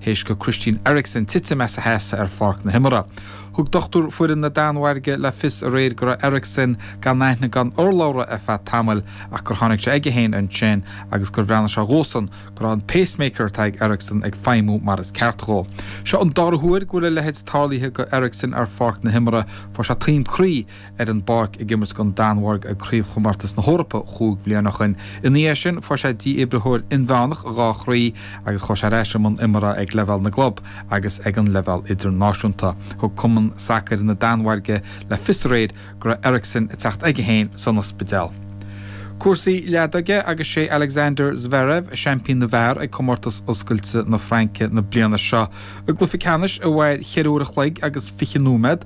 théis go Christian Eriksen titim as a sheasamh ar pháirc na himeartha. Thug dochtúir foireann na Danmhairge le fios aréir go raibh Eriksen gan aithne gan urlabhra ar feadh tamaill ach gur tháinig sé aige féin ansin agus gur bhreathnaigh sé dhósan go raibh an pacemaker atá ag Eriksen ag feidhmiú mar is ceart dhó. Seo an dara huair go bhfuil a leithéid tarlaithe go Eriksen ar pháirc na himeartha. Fuair sé taom croí. ar an bpáirc ag imirt don Danmhairg ag Craobhchomórtas na hEorpa chúig bhliain ó shin. Ina dhiaidh sin fuair sé dífhibritheoir inmheánach dhá chroí agus chuaigh sé ar ais i mbun imeartha ag leibhéal na gclub agus ag an leibhéal idirnáisiúnta. Thug Cumann Sacair na Danmhairge le fios aréir go raibh Eriksen ag teacht aige féin san ospidéal. Cúrsaí leadóige agus sé Alexander Zverev seaimpín na bhfear ag Comórtas Oscailte na Fraince na bliana seo. I gcluiche ceannais a mhair cheithre uair a chloig agus fiche nóiméad,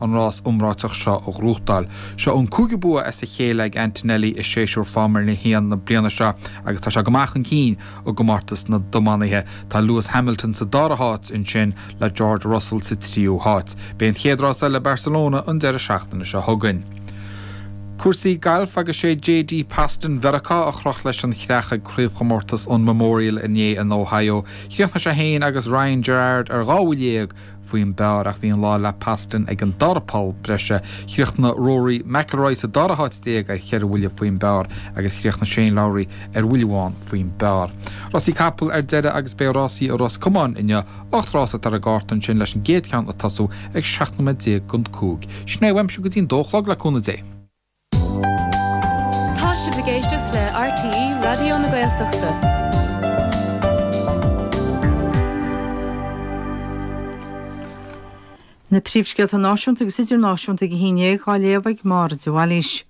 an rás iomráiteach seo a ghnóthachtáil. Seo an cúigiú bua as a chéile ag Antonelli i séasúr Foirmle a hAon na bliana seo agus tá sé go maith chun cinn i gcomórtas na dtiománaithe. Tá Lewis Hamilton sa dara háit, ansin le George Russell sa tríú háit. Beidh an chéad rás eile i Barcelona an deireadh seachtaine seo chugainn. Cúrsaí Gailf agus sé JT Poston Mheiriceá a chroch leis an chreach ag craobhchomórtas an Memorial inné in Ohio. Chríochnaigh sé féin agus Ryan Gerard ar dhá bhuille dhéag, faoin bpar ach bhí an lá le Poston ag an dara poll breise. Chríochnaigh Rory McIlroy sa dara háit déag ar cheithre bhuille faoin bpar agus chríochnaigh Shane Lowry ar bhuille amháin faoin bpar. Rásaí capall ar deireadh agus beidh rásaí i Ros Comáin inniu, ocht rás atá ar an gcárta ansin leis an gcéad cheann ag tosú ag 17 nóiméad gon cúig. Sin é uaimse go dtí'n dó a chlog le cúnamh Dé. Tá sibh ag éisteacht le RTÉ Raidió na Gaeltachta. Na príomhscéalta náisiúnta agus idirnáisiúnta ag a haon déag dhá léamh ag Máire de Bhailís.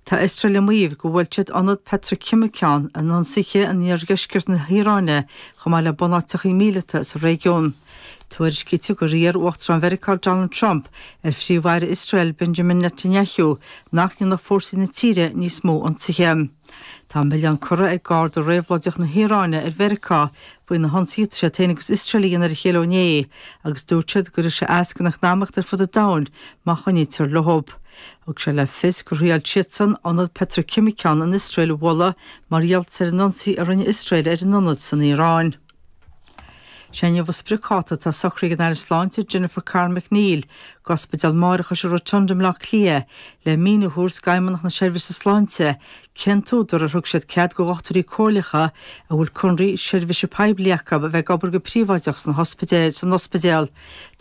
Tá Iosrael ag maíomh gur bhuail siad ionad peitriceimiceán in ionsaithe in iardheisceart na hIaráine chomh maith le bunáiteacha míleata sa réigiún. Tuairiscítear gur iarr Uachtarán Mheiriceá Donald Trump ar Phríomh-Aire Iosrael Benjamin Netanyahu nach ndéanfadh fórsaí na tíre níos mó ionsaithe. Tá an milleán curtha ag Garda Réabhlóideach na hIaráine ar Mheiriceá faoi na hionsaithe atá siad féin agus Iosrael a dhéanamh ar a chéile ó inné agus dúirt siad go gcuirfidh sé as gon eacnamaíocht ar fud an domhain má choinnítear leo. Thug sé le fios gur thriail siadsan ionad peitriceimiceán in Iosrael a bhualadh mar gheall ar an ionsaí a rinne Iosrael ar an ionad san Iaráin. Sé inniu an spriocdháta atá socraithe ag an Aire Sláinte Jennifer Carroll MacNeill go Ospidéal Máithreachais an Rotunda i mBleá Cliath le míniú a thabhairt d'Fheidhmeannacht na Seirbhíse Sláinte cén t-údar ar thug siad cead do dhochtúirí comhairleacha a bhfuil conraí seirbhíse poiblí acu a bheith ag obair go príobháideach san ospidéal.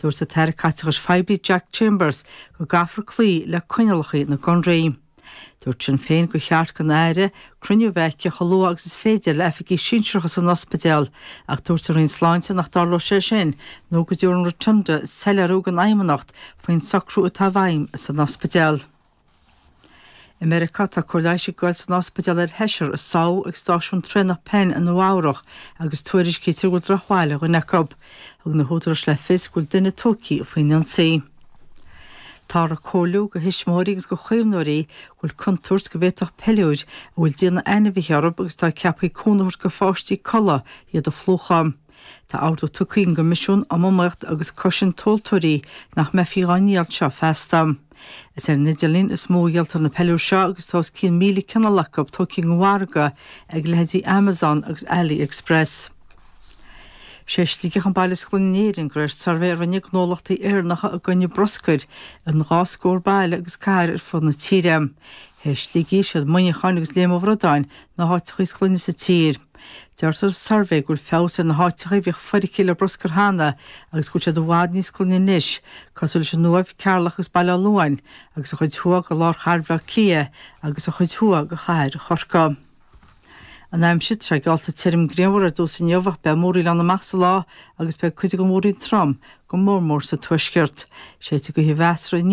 Dúirt an tAire Caiteachais Phoiblí Jack Chambers go gcaithfear cloí le coinníollacha na gconraí. Dúirt Sinn Féin gur cheart don Aire cruinniú a bheith aici chomh luath agus is féidir le oifigigh sinsearacha san ospidéal ach dúirt an Roinn Sláinte nach dtarlódh sé sin nó go dtabharfaidh an Rotunda soiléiriú don Fheidhmeannacht faoin socrú atá i bhfeidhm san ospidéal. I Meiriceá tá cóir leighis ag goil san ospidéal ar sheisear a sádh ag stáisiún traenach Penn i Nua Eabhrach agus tuairiscítear go bhfuil drochbhail ar dhuine acu. Thug na húdaráis le fios go bhfuil duine tógtha faoin ionsaí. Táthar ag comhairliú do thuismitheoirí agus do chaomhnóirí go bhfuil contúirt go bhféadfadh peiliúir a bhfuil déanamh ainmhithe orthu agus atá ceaptha cúnamh a thabhairt do pháistí codladh iad a phlúchadh. Tá ordú tugtha ag an gCoimisiún um Iomaíocht agus Cosaint Tomhaltóirí nach mbeifí á ndíol seo feasta. Is ar an idirlíon is mó a dhíoltar na peiliúir seo agus tá os cionn 1,000 cineál acu tógtha den mhargadh ag leithéidí Amazon agus Ali Express. Sé Sligeach an baile is glaine in Éirinn de réir suirbhé a rinne gnólachtaí Éireannacha i gcoinne bruscair in dhá scór baile agus cathair ar fud na tíre. Tar éis Shligigh is iad Muineachán agus Léim an Bhradáin, na háiteacha is glaine sa tír. Deirtear sa suirbhé go bhfuil feabhas ar na háiteacha a bhíodh foirgthe le bruscar cheana agus go bhfuil siad i bhfad níos glaine anois, cosúil leis an Uaimh, Ceatharlach agus Baile Átha Luain, agus an chuid thuaidh de lár chathair Bhaile Átha Cliath agus an chuid thuaidh de chathair Chorcaí. An aimsir atá geallta tirim grianmhar ar dtús inniu ach beidh múraíl ann amach sa lá agus beidh cuid de na múraí trom go mór mór sa tuaisceart. Séidfidh gaoth mheasartha aniar.